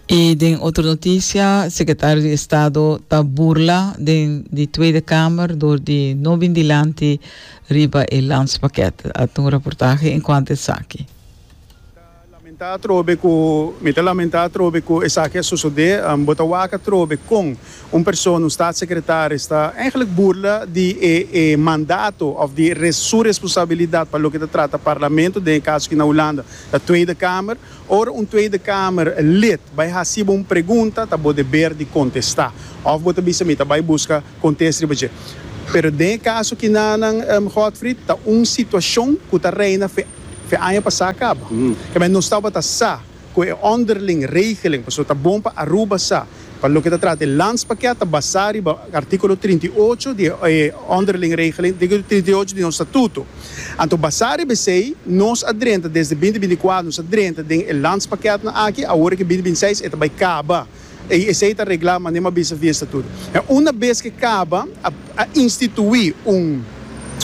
I den otro notisia, sekretario di Estado ta burla den di Tweede Kamer dor di no bin dilanti riba e lanspakèt. A ta un raportahe en kuantu esaki. Lamentá atrobe ku, Mi ta lamentá atrobe ku esaki a sosodé. Bo ta wak atrobe kon un persona, un statssekretaris, ta ègentlik burla di e e mandato òf di su responsabilidat pa loke ta trata Parlamento, den e kaso aki na Hulanda ta Tweede Kamer. Ora un Tweede Kamer lid bai hasi bo un pregunta ta bo deber di kontestá. Òf bo ta bisa mi ta bai buska kontes riba dje. Pero den e kaso kinanan, Godfried, ta un situashon ku ta reina fe fe aña pasá kaba. Kembay nos tabata sa ku e ònderling regeling, pasobra ta bon pa Aruba sa Pa loke ta trata e landspakket ta basá riba artíkulo trinta i ocho di e Onderling Regeling di artíkulo trinta i ocho di nos statuto. Anto basá riba esei nos a drenta desde binti binti i kuater nos a drenta den e landspakketten aki awor ke binti binti i seis e ta bai kaba i esei ta reglá manera m'ha bisa via statuto. Enta una bes ke kaba a a instituí un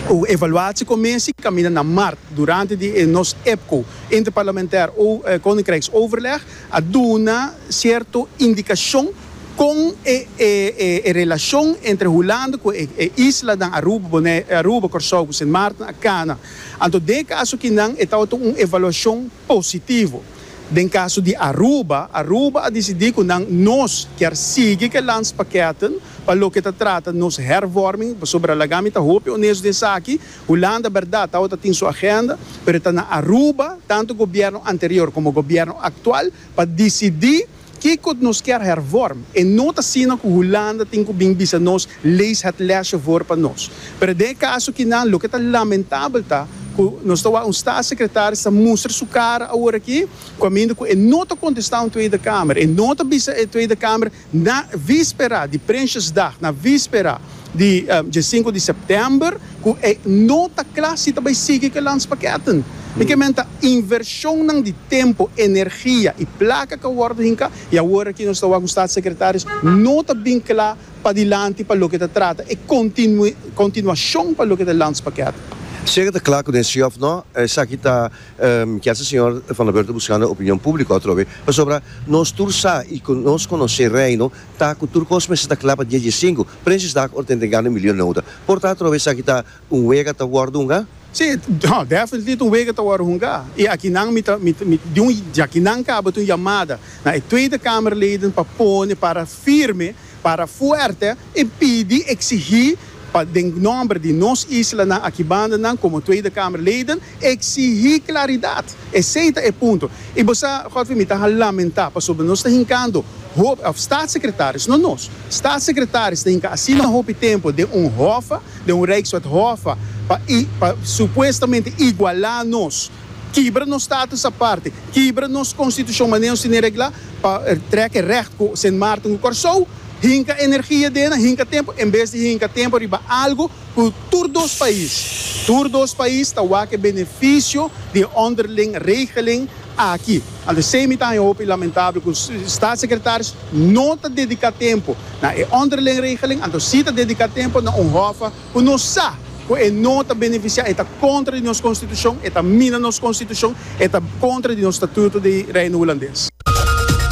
un evaluatiekommissie kaminda na mart durante di e nos EPCO, Interparlementair o Koninkrijksoverleg, a duna cierto indicacion con e e e e relacion entre Hulanda cu e e islanan Aruba, Bonaire, Aruba, Corsou cu Sint Maarten a cana. Anto den e caso akinan e tabata un evaluacion positivo. Den caso di Aruba, Aruba a dicidi cu nan nos kier sigui cu e landspakketten pa loke ta trata nos hervorming, pasobra laga mi ta hopi honesto den esaki, Hulanda berdad tawata tin su agenda, pero e ta na Aruba, tantu gobierno anterior como gobierno actual, pa dicidi kico nos kier hervorm. E no ta asina cu Hulanda tin cu bin bisa nos, lees het lesje voor pa nos. Pero den e caso aki nan, loke ta lamentabel ta cu nos ta wak un staatssecretaris ta mustra su cara aworaki, caminda cu e no ta contesta un Tweede Kamer, e no ta bisa e Tweede Kamer, Na víspera di Prinsjesdag, na víspera di dje sinku di sèptèmber, ku e no ta kla si ta bai sigui ku e lanspakèten. Mi ke menta invershonnan di tempu, energia i plaka ka wòrdu hinká i awor aki nos ta wak un Statssekretarius no ta bin kla padilanti pa loke ta trata e kontinuashon pa loke ta e lanspakèten. Si e ka ta kla ku den sí òf no, esaki ta Mi kier sa Señor Vanderburg ta buscando opinion publico atrobe pasobra nos tur sa y cu nos conoce Reino ta cu tur cos mester ta cla pa dies dies cinco Prinsjesdag or tenten gana milio noda por ta atrobe esaki ta un wega ta wordo hunga? Si, ha, definitely ta un wega ta wordo hunga y akinan mi ta mi di un djakinan caba di un yamada na e Tweede Kamerleden pa pone para firme. Para fuerte y pidi, exigi, pa den nomber di nos islanan akibandanan como Tweede Kamerleden, exigi claridad. Esey ta e punto. Y bo sa, Godfrey, mi ta ha lamenta pasobra nos ta hincando hopi, of Staatssecretaris, no nos, Staatssecretaris ta hinca asina hopi tempo den un hofa, den un Rijkswet hofa, pa, pa supuestamente iguala nos. Kibra nos status aparte, kibra nos konstitushon manera nos tene reglá pa trèk e rècht ku Sint Maarten ku Kòrsou hinka energia den nan, hinka tempu, en bes di hinka tempu riba algu ku tur dos pais, tur dos pais ta wak e benefisio di e onderling regeling aki. Anto esei mi ta haña hopi lamentabel ku Staatssekretaris no ta dediká tempu na e onderling regeling, anto sí ta dediká tempu na un hòf, Ku nos sa ku e no ta benefisiá, e ta kontra di nos konstitushon, e ta mina nos konstitushon, e ta kontra di nos statuto di Reino Hulandes.